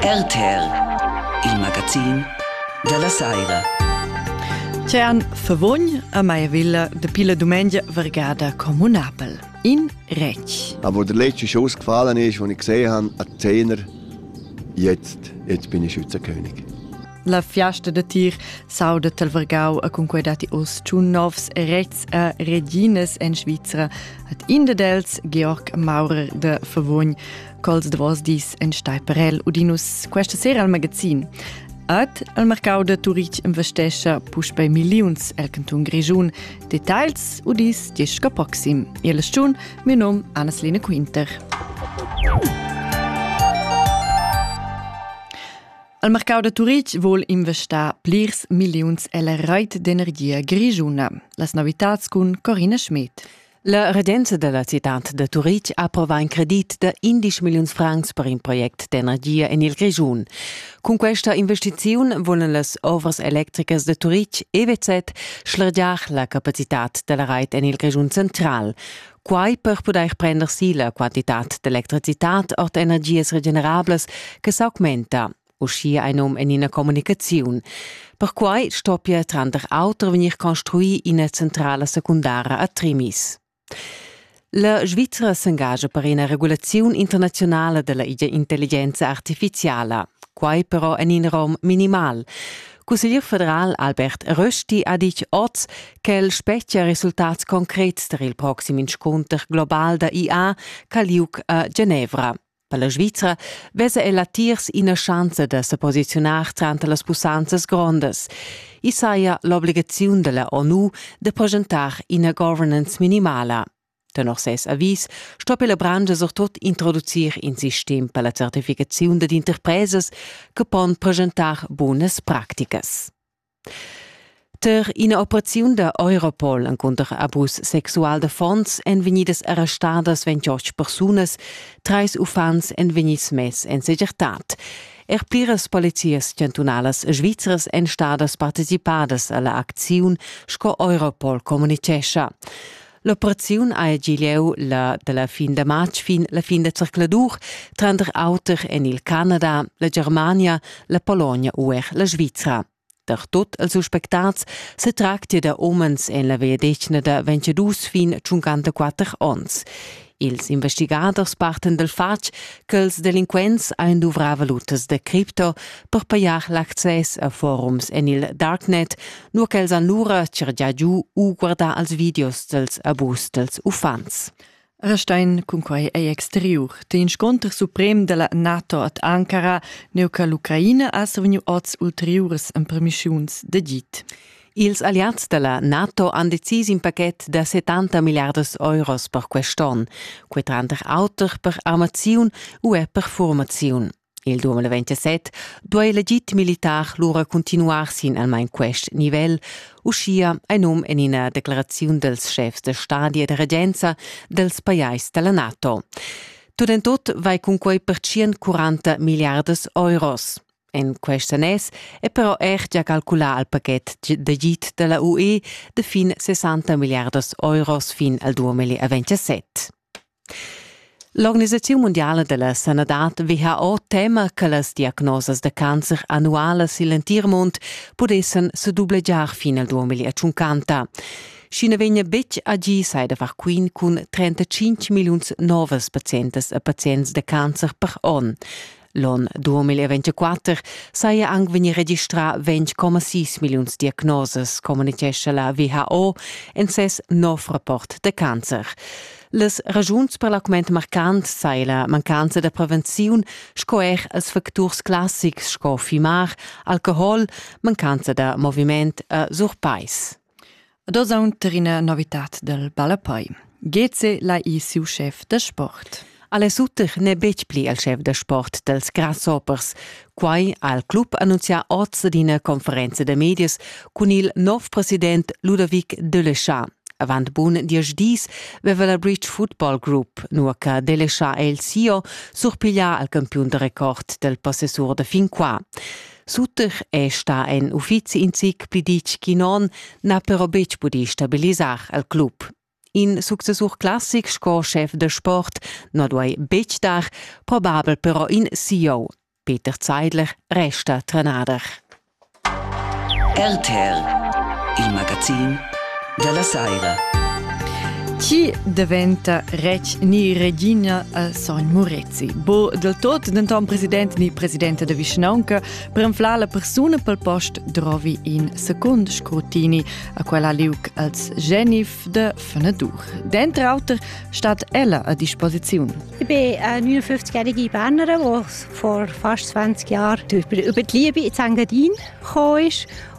RTL, il magazin dalla saira. Tern Favogn a Maiavilla de pila dumengia vergada comunabel. In Rec. Aber der letzte schon ausgefallen ist, den ich gesehen habe, ein Zehner, jetzt, jetzt bin ich Schützenkönig. La fiasta da tir s'auda talvergau a cunquei datti oz tschun novs Rets e Reginas en Svizra, hat in dels Georg Maurer de Favogn cols davos dis en Steiperel Udinus questa sera al magazin. At al mercau de Turitg investescha puspei milliuns el canton Grischun. Details udis disca proxim. Il stun, mio nom Anna-Lena Quinter. Il mercau da Turitg vul investar plirs milliuns ella reit d'energia grischuna. Las novitads cun Corina Schmidt. La regenza della citad da Turitg approva in credit da 11 milliuns francs per in project d'energia en il Grischun. Cun questa investiziun volen las ovras electricas de Turitg EWZ schlergiar la capacitad della reit en il Grischun central. quai per pudair prender si la quantitad d'electricitad ord energias regenerablas che s'augmenta, uschia ein num en ina communicaziun. Perquai stoppia tranter auter vegnir construì ina centrala secundara a Trimis. La Svizra s'engagia per ina regulaziun internazionala della intelligenza artificiala, quai però en in rom minimal. Cusseglier federal Albert Rösti ha ditg oz ch'el spetgia resultats concrets tar il proxim inscunter global da IA ch'ha liug a Genevra. Per la Svizra vesa el latiers ina schanza da sa posiziunar tranter las pussanzas grondas. I saja l'obligaziun della ONU de progentar ina governance minimala. Tenor ses avis sto la branscha surtut introducir in sistem per la certificaziun dad interpresas che pon presentar bunas practicas. Ter ina operaziun da Europol encunter abus sexual da fonds èn vegnidas arrestadas 28 persunas, trais uffants èn vegnids mess en segirtad. Er pliras polizias chantunalas svizras èn stadas participadas a la acziun, sco Europol communitgescha. L'operaziun ha gi lieu la, da la fin da matg fin la fin da zercladur, tranter auter en il Canada, la Germania, la Polonia u er la Svizra. Da tot els suspectats se tractia da omens en la vegliadetgna da 22 fin 54 onns. Ils investigaders parten dal fatg ch'els delinquents ein duvrà valutas da cripto per pajar l'access a forums en il darknet, nur ch'els han lura cergià giu u guardà als videos dels abus dels uffants. Restein cun quai ei exteriur. Te insconter suprem della NATO ad Ankara, neu che l'Ucraina ha survegniu oz ulteriuras empermischiuns d'agit. Ils alliads da la NATO han decis in pachet da 70 milliardas euros per quest onn, quei tranter auter per armaziun u er per formaziun. Il 2027 duai legit militar lura continuar sin almain quest nivel, uschia ein num en ina declaraziun dels chefs da stadi e da regenza dels pajais dalla NATO. Tut en tut vai cunquei per 140 milliardas euros. En quest annes è però er gia calculà il pachet d'agid da la UE de fin 60 milliardas euros fin al 2027. L'Organisaziun mondiale della sanadad WHO tema che las diagnosas da cancer annualas il entir mund pudessan se dublegiar fin al 2050. Schi ne vegna betg agì sai da far quin cun 35 milliuns novas patientas e patients da cancer per onn. L'on 2024 saja anc vegnì registrà 20,6 milliuns diagnosas, communitgescha la WHO en ses nov rapport da cancer. Las ragiuns per l'augment marcant sai la mancanza da prevenziun sco er als facturs classics sco fimar, alcohol, mancanza da moviment e surpais. Ad oz aunter ina novitad dal ballapei. Geze lai ir siu chef da sport. Alex Utter n'è betg pli il chef da sport dals Grasshoppers. Quai ha il club annunzià oz ad ina conferenza da medias cun il nov president Ludovic Delechard. Avant bun diesch dis veva la Bridge Football Group, nua che Delechard è il CEO, surpiglià al campiun da record del possessur da fin qua. Suter è stà en uffizi in zic pli ditg che non, n'ha però betg pudì stabilisar al club. In successur classic sco schef da sport na duai betg dar, probabel però in CEO. Peter Zeidler resta trenader. RTL, il magazin della Saira. Chi diventa rec ni regina al sogn Muret? Zi. Bu del tot denton president ni presidenta de vischnaunca prenfla la persuna pel post drovi in secund scrutini a quella liuc als genif de Fenadur. Dentr auter stat ella a disposiziun. Ich bin äh, 59-jährige Bernerin, die vor fast 20 Jahren über die Liebe in Zengadin gekommen ist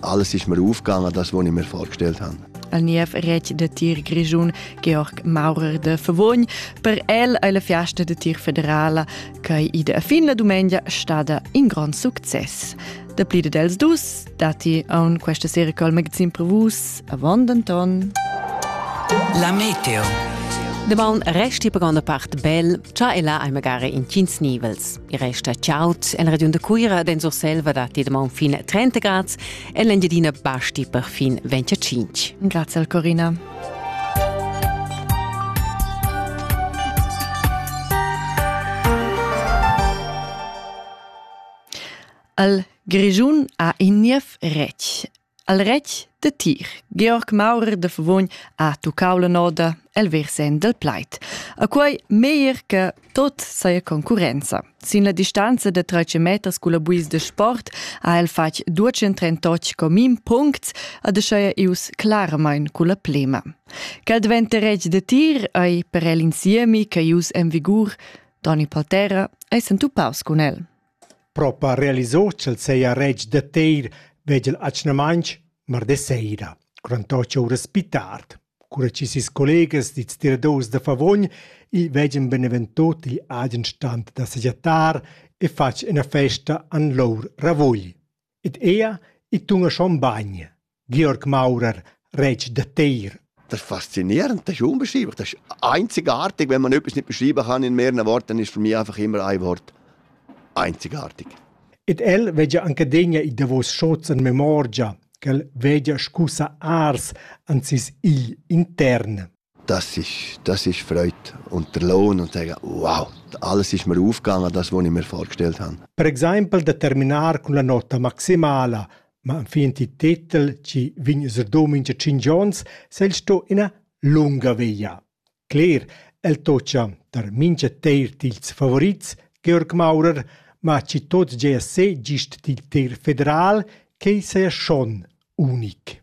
Alles ist mir aufgegangen, das, was ich mir vorgestellt habe. El niev retg de tir grischun Georg Maurer de Vervogn per el è la fiasta de tir federala che i de fin la dumengia stada in grand success. Da plide dels dus, dati a un questa sera col magazin per vus, avant denton. La Meteo. De bon resti per gronda part bel, cha ella è magari in cins nivels. Il resta chaud en regiun da Cuira den Surselva da Tedemont fin 30 grads e l'Engiadina basti per fin 25. Grazie al Corina. Al Grischun ha in niev retg. El retg da tir Georg Maurer da Favogn ha tuccau la noda el versen dal plaid. A quei meglier che tot saja concurrenza. Sin la distanza da 13 meters culla buis de sport ha el fatg 238 comin puncts ad aschaia ius claramain culla plema. Quel diventa reg de tir ei per el insiemi che ius en vigur. Toni Paltera ei sentupaus cun el. Propa realisò ch'el seja retg da teir vegl atgnamainch mardi saira, cura to ch'oura spi tard, cura chi seis collegas dits tiradors da Favogn il veggan benevento til agen stand da sagiattar e fatg üna festa an lur ravugl. Ed ella, i tuna schon bagn, Georg Maurer, retg da Teir. Das Faszinierende ist unbeschreiblich. Das ist einzigartig. Wenn man etwas nicht beschreiben kann in mehreren Worten, dann ist für mich einfach immer ein Wort. Einzigartig. Ed el vegia anche degna i davos schots en memorgia, ch'el vegia scusa ars ansis igl intern. Das ist, das ist Freude. Und der Lohn und sagen, wow, alles ist mir aufgegangen, das, was ich mir vorgestellt habe. Per exempel da terminar cun la nota maximala, ma enfin il titel ci vegn user domingia cinc giorns, sei sto ina lunga via. Cler, el tocia tar mincha teir dils favorits, Georg Maurer, ma ci tot GSC gist dil teir federal, quei seia schon unic.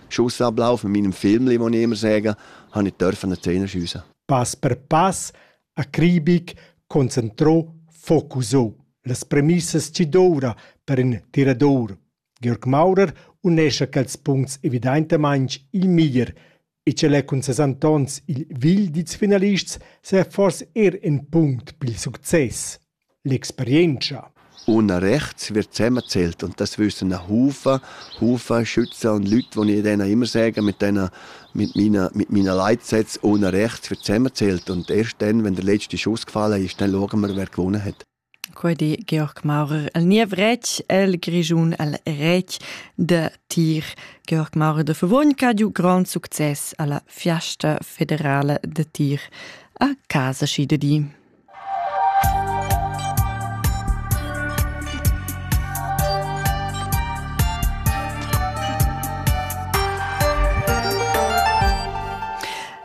Schuss ablaufen mit einem Film, wie man immer sagen, habe ich dürfen an die Zähne schiessen. Pass per pass, acribic, concentrò, focusò. Las premissas ci doura per in tirador. Georg Maurer unescha quels punts evidaintamaing il miglier e ce l'è cun ses Antons il vil dits finalists se forse er in punct pil success. L'experientscha. Una rechts wird zusammengezählt und das wissen auch Hufe. Hufe schützen und Leute, die ich denen immer sage, mit denen, mit meinen, mit meinen Leitsätzen, ohne rechts wird zusammengezählt und erst dann, wenn der letzte Schuss gefallen ist, dann schauen wir, wer gewonnen hat. Quedi Georg Maurer el niev rec el Grischun el rec de tir. Georg Maurer de Verwon ha giu grand success alla Fiasta federale de tir a casa schi de di.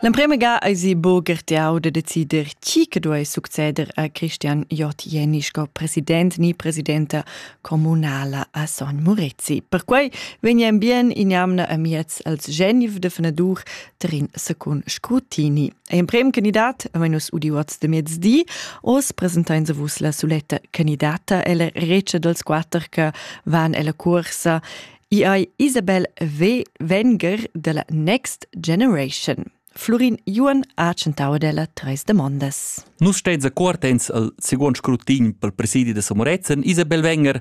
L'emprema ga eisi bo gertiau de decider chi che duei succeder a Christian Jott Jenny sco president ni presidenta communala a Son Murezi. Perquei vegnan bien in jamna amiez als Genf de Fenadur ter in secund scrutini. È emprem candidat avain nus udiu oz de mezdi. Oz presentain se vus la suletta candidata, ella recia dels quater che van ella cursa. I ei Isabel V. Wenger della Next Generation. Flurin Juan ha centau della treis demondas. Nus steins accortens al second scrutin pel presidi de Samorezen, Isabel Wenger,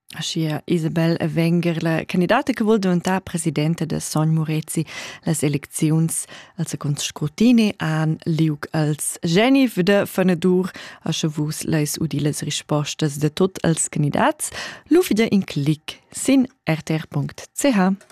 Aschia Isabel Wenger, la candidata che vul diventar presidenta da Sogn Murezi, las elecziuns al secund scrutini han liug als Geni da Fenadur, asche vus leis udi las rispostas de tot als candidats, lu fida in clic sin rtr.ch.